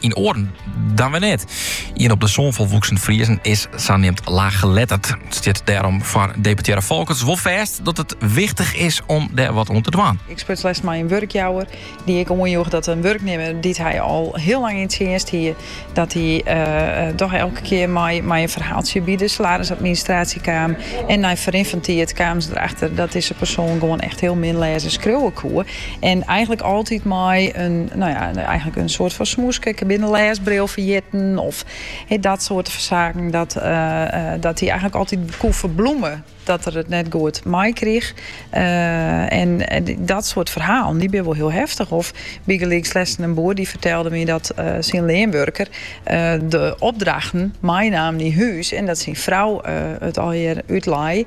En oaren dan wer net. Ien op de sân folwoeksen Friezen is saneamd laaggeletterd. It stiet dêrom foar deputearre Folkerts wol fêst dat it wichtich is om dêr wat oan te dwaan. Ik spruts lêst mei in wurkjouwer dy't ek oanjoech dat in wurknimmer dy't hy al hiel lang yn tsjinst hie, dat dy dochs elke kear mei in ferhaaltsje by de salarisadministraasje kaam en nei ferrin fan tiid kamen se der achter dat dizze persoan gewoan echt hiel min lêze en skriuwe koe. En eigenlik altyd mei in, nou ja, eigenlik in soarte fan smoeske. Ik bin de lêsbril ferjitten of he, dat soarte fan saken. Dat, uh, uh, dat hy eigenlik altyd koe ferbloemen dat er it net goed meikrige. Uh, en, en, dat soart ferhalen, dy bin wol hiel heftich. Of bygelyks lêsten in boer dy fertelde my dat uh, syn leanwurker uh, de opdrachten meinaam nei hûs. En dat syn frou it allegear útlei.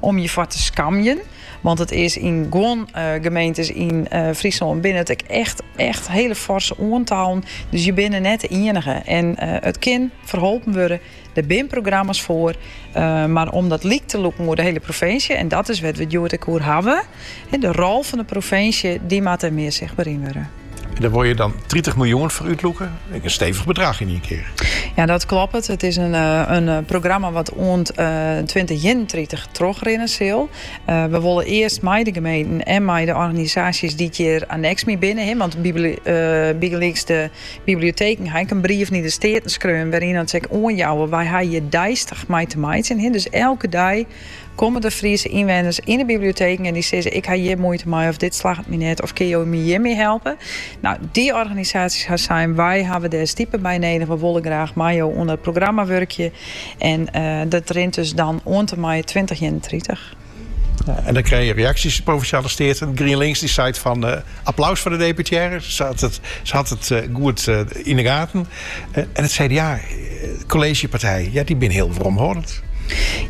Om je foar te skamjen. Want it is yn guon gemeentes yn Fryslân binne it ek echt, echt hiele forse oantallen. Dus je binne net de ienige. En it kin ferholpen wurde. Der binne programma's foar. Mar om dat lyk te lûken oer de hiele provinsje, en dat is wêr't we it hjoed ek oer hawwe. De rol fan de provinsje dy moat dêr mear sichtber yn wurde. Dêr wol je dan tritich miljoen foar útlûke, ek in stevich bedrach yn ien kear. Ja, dat kloppet. It is in programma wat oant twintich ienentritich trochrinne sil. We wolle earst mei de gemeenten en mei de organisaasjes dy't hjir anneks mei binne, want bygelyks de biblioteken ha ek in brief nei de Steaten skreaun wêryn't se ek oanjouwe, wy ha hjir deistich mei te meitsjen, dus elke dei Komme der Friese ynwenners yn de biblioteken en dy sizze, ik ha hjir muoite mei of dit slagget my net of kinne jo my hjirmei helpe? Nou, dy organisaasjes ha sein, wy hawwe dêr stipe by nedich, we wolle graach mei jo oan dat programma wurkje en dat rint dus dan oant en mei tweintich ienentritich. En dan krije je reaksjes. De Provinsjale Steaten, GrienLinks, die seit fan, Applaus foar de deputearre, se hat it goed yn 'e gaten. En it CDA, de kolleezjepartij, ja, dy binne hiel weromhâldend.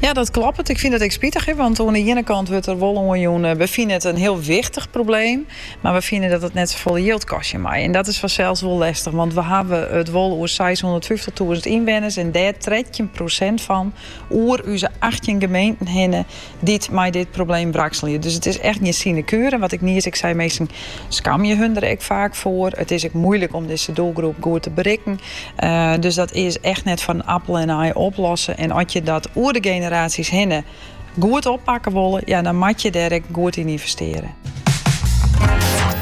Ja, dat kloppet. Ik fyn it ek spitich, want oan 'e iene kant wurdt der wol oanjûn, we fine it in hiel wichtich probleem, mar we fine dat it net safolle jild kostje mei. En dat is fansels wol lestich, want we hawwe it wol oer seishûndertfyftich-tûzen ynwenners en dêr trettjin prosint fan oer ús achttjin gemeenten hinne dy't mei dit probleem wrakselje. Dus it is echt gjin sinekure. Wat ik nies ek sei, minsken skamje hun der ek faak foar. It is ek moeilik om dizze doelgroep goed te berikken. Eh, dus dat is echt net fan appel en aai oplossen. En at je dat oer de generaasjes hinne goed oppakke wolle, ja, dan moat je dêr ek goed yn ynvestearje.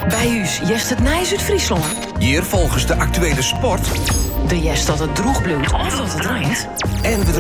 By ús hearst it nijs út Fryslân. Hjir folgest de aktuele sport. Do hearst dat it droech bliuwt of dat it reint. En we